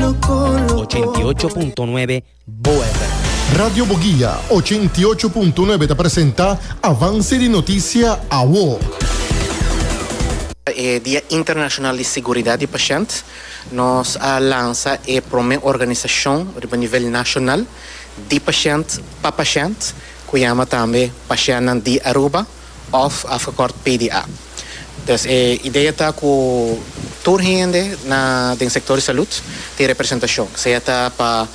88.9 Boa FM. Radio Boguia, 88.9 ta presenta Avance di Noticia Awo. E Dia Internashonal di Siguridat di Pashènt nos a lansa e promé organisashon riba nivel nashonal di pashènt pa pashènt ku yama tambe Pashènan di Aruba. Òf afgekòrt PDA. Dus e idea ta ku tur hende na den sektor di salud tin representashon, sea ta pa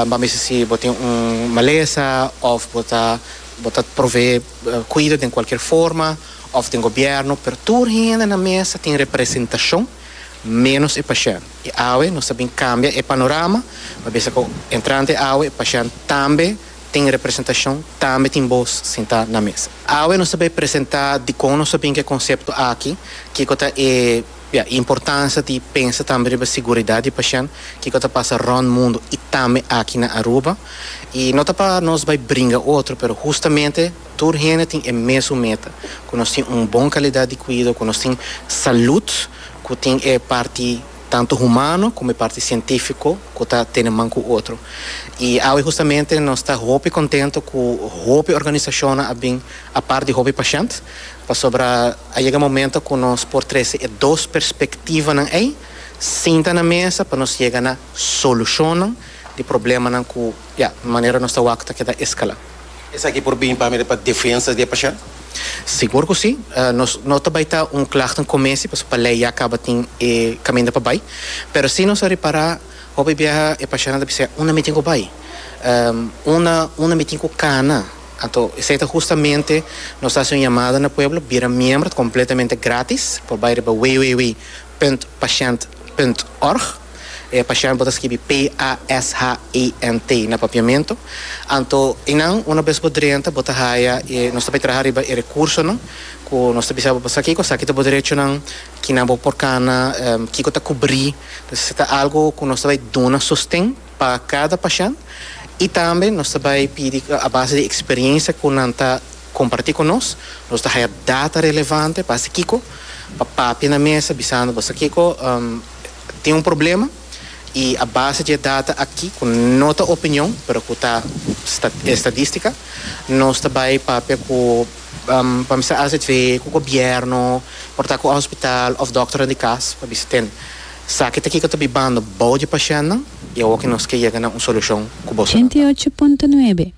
bo a mester si bo tin un malesa òf bo ta bo ta proveé kuido den kualkier forma òf den gobièrnu, pero tur hende na mesa tin representashon ménos e pashènt. I awe nos ta bin kambia e panorama, pabia esaki entrante awe e pashènt tambe tin representashon, tambe tin bos sintá na mesa. Awe nos ta bai presentá dikon nos ta bin ku e konsepto aki, kiko ta e importansia di pensa tambe riba siguridat di pashènt, kiko ta pasa rònt mundu i tambe aki na Aruba. I no ta pa nos bai bringa otro, pero hustamente tur hende tin e mesun meta, ku nos tin un bon kalidat di kuido, ku nos tin salut ku tin e parti. tantu humano como e parti cientifico cu ta tene man cu otro. Y awe justamente nos ta hopi contento cu hopi organisacionnan a bin apart di hopi pashent, pasobra a yega momento cu nos por trece e dos perspectivanan ey sinta na mesa pa nos yega na solucionnan di problemanan cu. Ya, manera nos ta wak ta keda eskalá. Esaki por bini pa mira pa defensa di e pashent? Sigur ku si. Nos no ta bai ta un klagta un kumesi, pasobra pa lei ya kaba tin e kaminda pa bai. Pero si nos a repará hopi biaha e pashentnan ta bisa, Unda mi tin ku bai? Unda, unda mi tin ku kana? Anto esei ta hustamente nos ta hasi un yamada na pueblo, bira miembro, ta kompletamente grátis, por bai riba www. Punt Pashent Punt Org E Pashent bo ta skibi p-a-s-h-e-n-t na Papiamento. Anto i nan una bes bo drenta bo ta haya e nos ta bay traha riba e recursonan cu nos ta bisa bo pasa kico esaki ta bo derechonan kinan bo por cana kico ta cubri pues si ta algo cu nos ta bay duna sosten pa cada pashent y tambe nos ta bay pidi a base di experiencia cu nan ta kompartí ku nos. Nos ta haya data relevante pa hasi kiko? Pa papia na mesa bisando bo, Sa kiko? Tin un problema i a base di e data aki, ku no ta opinion pero ku ta estadístika, nos ta bai papia ku, pa bisa azv, ku gobièrnu, por ta ku e hospital òf dòkternan di kas pa bisa ten esaki ta kiko ta bibando bou di pashèntnan i awor ke nos ke yega na un solushon ku bo solo ta. Ochenta i ocho punto nuebe.